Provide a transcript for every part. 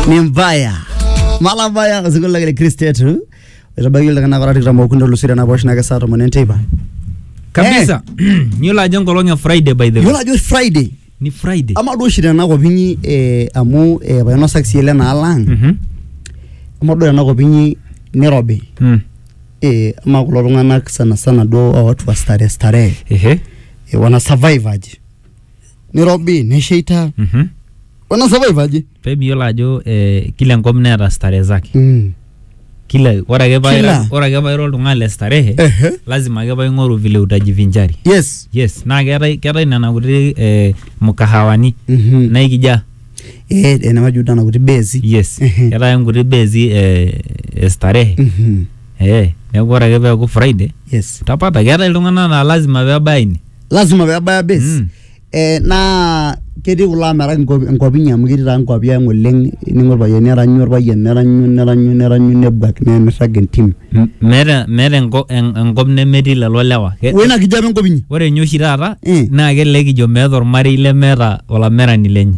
ni mbaya mala mbaya osinkolio lang le kristo yetu etabaiki iltung'anak ora tikitam okuni olusiri enaposh nake saa tomon enteipa kabisa yiolo ajo enkolong e friday by the way yiolo ajo friday ni friday ama duo oshi tenakop inyi eh, amu eh, painosaki sii ele naala ang Mhm. ama duo tenakop inyi nirobi Mm. eh, ama kulo tung'anak sana sana duo watu wa starehe starehe Ehe. eh, wana survive aje nirobi nesheita Mhm. wana survive aje pee miyiolo ajo eh, kila enkop neeta starehe zake mm. kila ore ake paa Kila. ira- ore ake paa ira oltung'ani le starehe Ehe. lazima ake paa ing'oru vile utajivinjari yes yes naa keetae keetae nena kuti eh, mkahawani Mhm. naikija eh, enamaji udana kuti besi yes Ehe. keetae nkuti bezi eh, eh, starehe Mhm. eh, neeku ore ake peeku friday yes utapata keetae iltung'anak naa lazima pebaya ine lazima pebaya base Mm. eh, naa ketii kulo amerak inkuapi- inkuapi inyi amu ketii taa inkuapi ang oleng ningo orpayian neranyu orpayian neranyu neranyu neranyu nebuak ne- nirrag entim M- meeta meeta enko- en- enkop nemetii lelo lewa Ke- wena kijape enkop inyi ore ninye oshi taata Eh. naa kelelek kijo meeta ormarei lemeeta olamerani lenye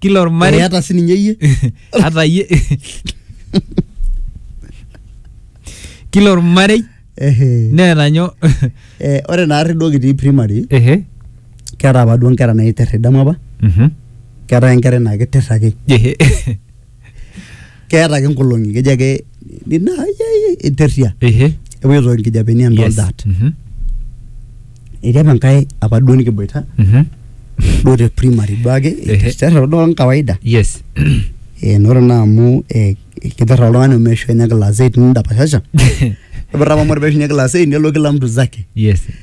kila ormarei eata sininye iyie hata ye kila ormarei Ehe. neeta nyo Eh, ore naarri duo kitii primary ehe keeta apa duo nkera naiter idamu apa Mhm. keetae enkerai naa kiter ake ehe keeta ake nkolong'i keji ake nina interria Ehe. epoito nkijapeni and all Yes. that Mhm. etii apa enkae apa duo nikiboita Mhm. duo te primary duo ake Ehe. terra duo ang kawaida Yes. Eh, nore naa amu eh, kiterra oltung'ani omeishu enya class 8 nindapashasha Kibirra apa mori peishunye class 8 nelo kila mtu zake Yes.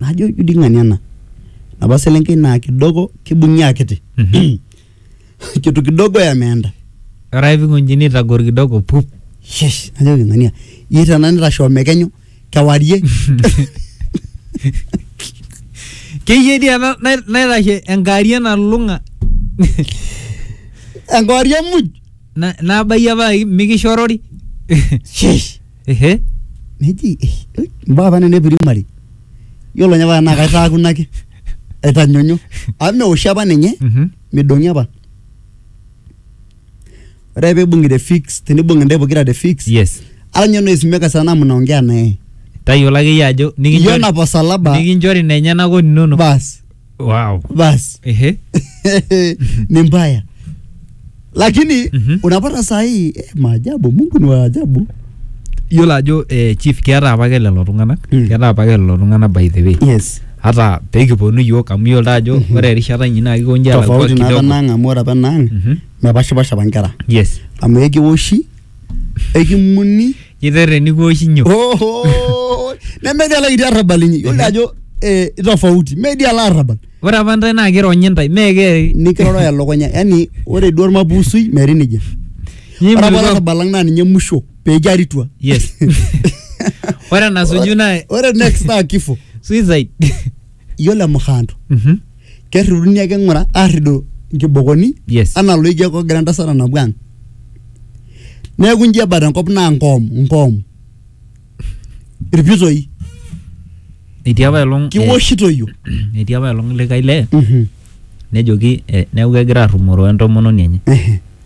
najo ijo dii ng'ania ena napa selenkei naa kidogo kibung'i akiti kitu kidogo yameenda Ore ake pikunjini itagor kidogo pup. Shesh, najoki ng'ania iyie tena nitashoo mekenyu kewarie Keyie dii ena nai- naitashe enkarie nalulung'a. enkewarie muj Na- nabayie apa ai- mikishorori Sheesh. ehe neji eh, eh, mbaa apa nena primary yiolo ninye apa naa kaitaakuna ake aitanyonyo amu meoshi apa ninye Mhm. midong'i apa ore peibung'i te fix tenibung'i ntae pokira te fix yes ara ninye noisimeka sana mnaongea naye tayiolo akeyie ajo nikinchori- iyiona posalaba nikinchori nenyenak oninono bas wow basi ehe ni mbaya lakini Mhm. unapata saa hii eh, maajabu mungu ni waajabu yiolo ajo eh, chief keeta apake lelo tung'anak Mm. keeta apake lelo tung'anak by the way yes hata pekiponu yiok amu yiolo taa ajo ore erishata inyi naa kikonji alakua tofauti naa kidogo penang amu ore penang Mhm. mepashipasha apa nkera yes amu ekiwoshi ekimuni Kiterreni kuoshinyo. Oho! Nemetii alaiti arrabal inyi. Yiolo ajo eh, tofauti. Metii ala arrabal. Ore apa ntae naa kironyi ntae. Mee ke. Nikiroro elukunya. Yaani ore duo ormapusui metii nejia. Ore apa Nyimulukwa. olarrabal lang naa ninye musho pee kiaritua. Yes. Ore enasuju naa Ore next naa kifo. suicide. iyiolo emukhaanto Mhm. kerriduni ake ng'ura aarridu nkibokoni Yes. anaa loijo ake ogira entasat anapu ang neeku inji ebata enkop naa nkoom nkoom irpitoi Etii apa elong eh, kiwoshitoyio etii apa elong likae lee Mhm. nejoki eh, neeku kegira arrumoro entomononi enye. Ehe.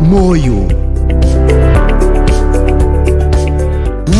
Moyo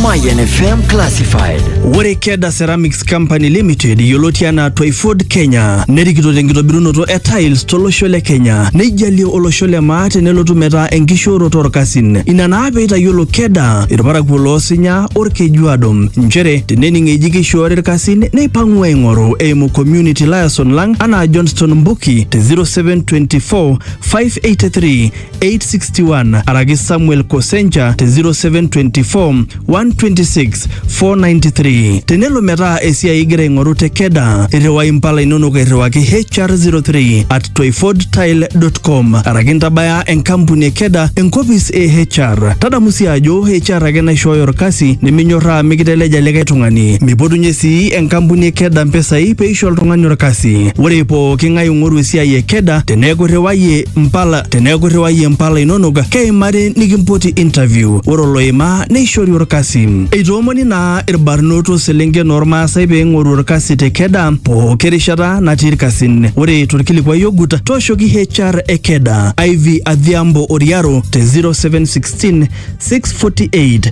Mayan FM Classified. Ore Keda Ceramics Company Limited yioloti anaa Toyford Kenya nerikito tenkitobirunoto e tiles tolosho le Kenya neijalie olosho le maa tenelotu metaa enkishooroto orkasin. Ina naa peitayiolo Keda irparakuo loosinya orkejuado nchere tenening eji keishoori irkasin neipang'u aing'oru eimu community liaison lang anaa Johnston Mbuki te 0724 583 861 araki Samuel Kosencha te 0724 126 493. Tenelo metaa esiai igira aing'oru te Keda, irriwai impala inonok airriwaki HR03 at toifordtile.com araki intabaya enkampuni e Keda enkopis e HR. Tadamu sii ajo HR ake naishooyo orkasi niminyorraa mikiteleja likae tung'ani. Mipotunye sii enkampuni e Keda mpisai peisho oltung'ani orkasi. Ore pooki ng'ae ing'oru esiai e keda teneeku irriwayie mpala teneeku irriwayie mpala inonok keimari nikimpoti interview ore oloima neishori orkasi eitoomoni naa irbarnot o selenken ormaasai pee ing'oru orkasi te keda pooki rishata natii irkasin ore torkilikuai ogut tooshoki HR e keda Ivy Adhiambo Oriaro te 0716 648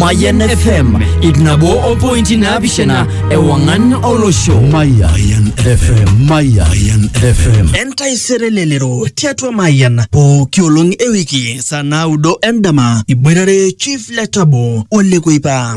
Mayan FM ip nabo o pointi naapishana ewang'an olosho. Mayan FM, Mayan FM. Entaisere lelero tiatua Mayan pooki olong ewiki saa naudo endama iboitare Chief Letabo Ole Kuipa.